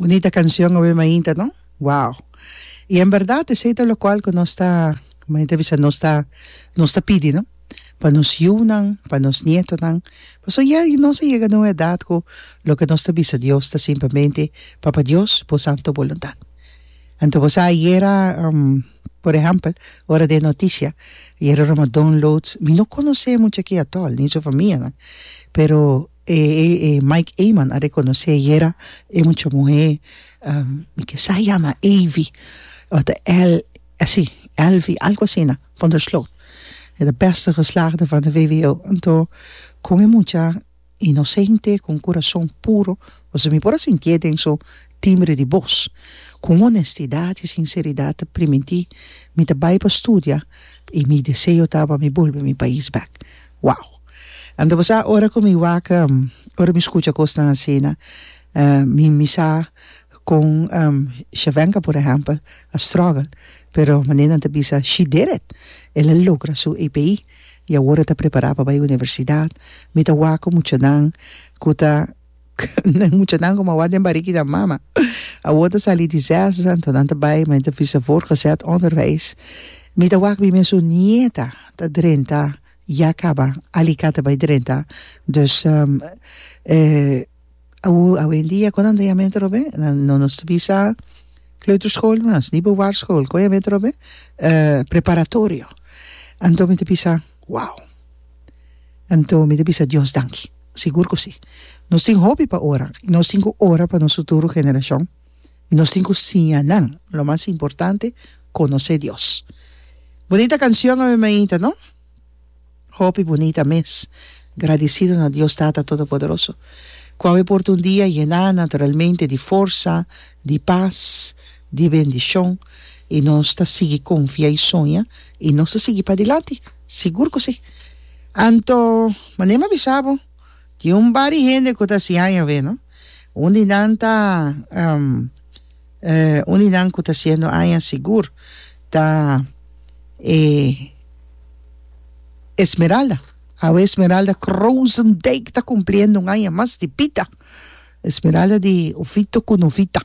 Bunita cancion awe mainta no wow y en verdad esey ta locual cu nos ta mainta bisa nos ta nos ta pidi no pa nos yiunan pa nos nietonan pasobra ya nos a yega na un edad cu loke nos ta bisa Dios ta simplemente papa Dios bo santo voluntad anto bo sa ayera. Por ehèmpel, ora den noticia yera roma downloads, mi no conoce mucha aki atol, ni su famianan, pero e e Mike Eman a reconoce yera e mucha muhé, mi ke sa yama Evi, o ta El, así, Elvi, algo asina, van der Sloot, e ta bèste geslaagde van de VWO. Anto, con e mucha. inosente ku un kurason puro, pasobra mi por a sintié den su timbre di bos ku un onestidat i sinseridat ta primintí mi ta bai pa studia i mi deseo ta pa mi bolbe mi pais bèk. Wow! Anto sa ora ku mi waka, ora mi skucha kosnan asina, mi mi sa kon Shevhenka por ehèmpel a struggle, pero manera nan ta bisa, she did it, el a logra su API. y awor a ta prepara pa bay universidad, mi ta wak cu muchanan cu ta muchanan como a wak den barigi nan mama, awor ta sali di zes anto nan ta bay ma e ta bisa voortgezet onderwijs, mi ta wak mi mes un nieta ta drenta ya caba alicate bay drenta, dus Awor awendia kon nan ta yama e trobe nan no nos bisa kleuterschool mas ni bovaar school kon yama e trobe preparatorio anto mi ta bisa wow anto mi ta bisa Dios danki sigur ku si nos tin hopi pa ora i nos tin ku ora pa nos futuro generashon i nos tin ku siña nan lo mas importante konosé Dios. Bonita kanshon ave mainta no. Hopi bunita mes. Gradisido na Dios Tata Todopoderoso, cu a wipor tin un dia yena naturalmente di forsa, di pas, di bendicion, y nos ta sigui confia y soña, y nos ta sigui padilanti. Sigur cu si. Anto, manera mi a bisa bo, tin un bari hende cu ta hasi aña awe, no? Un di nan ta. Un di nan ku ta siendo aña sigur ta e Esmeralda. Awe Esmeralda Croosendijk ta cumpliendo un aña mas di bida. Esmeralda di Ofito ku Novita.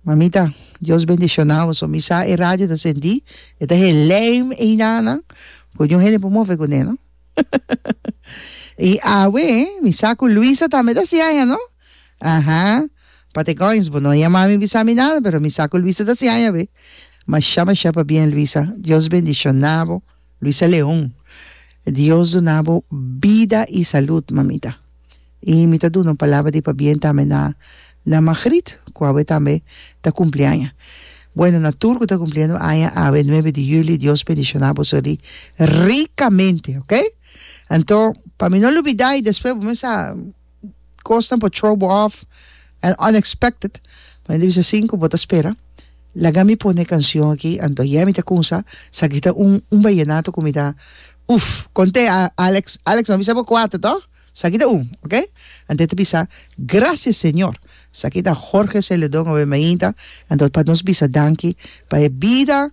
Mamita, Dios bendicionawo. So mi sa e radio ta sentí, e ta helem einan nan, ku niun hende por move ku ne, no. I awe mi sa ku Luisa tambe ta hasi aña, no. Aha. Patecoins bo no a yama mi bisa mi nada pero mi sa cu Luisa ta siña aña be masha masha pa bien Luisa Dios bendiciona bo Luisa Leon Dios duna bo bida y salud mamita y mi ta duna un palabra di pa bien tambe na na Magrit cu awe tambe ta cumpli aña bueno na tur cu ta cumpliendo aña awe nuebe di juli Dios bendiciona bo suri ricamente ok anto pa mi no lubida y despues bo me sa. cosnan por throw bo off and unexpected bo tabata bisa sin cu bo ta spera laga mi pone e cancion aki anto yeah mi ta cunsa sa aki ta un un vallenato cu mi ta uff conte a Alex Alex no bisa bo cuato to sa aki ta un ok anto e ta bisa gracias señor sa aki ta Jorge Celedon awe mainta anto pa nos bisa danki pa e bida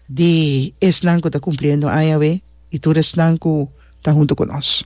di esnan cu ta cumpliendo aña awe y tur esnan cu ta hunto cu nos.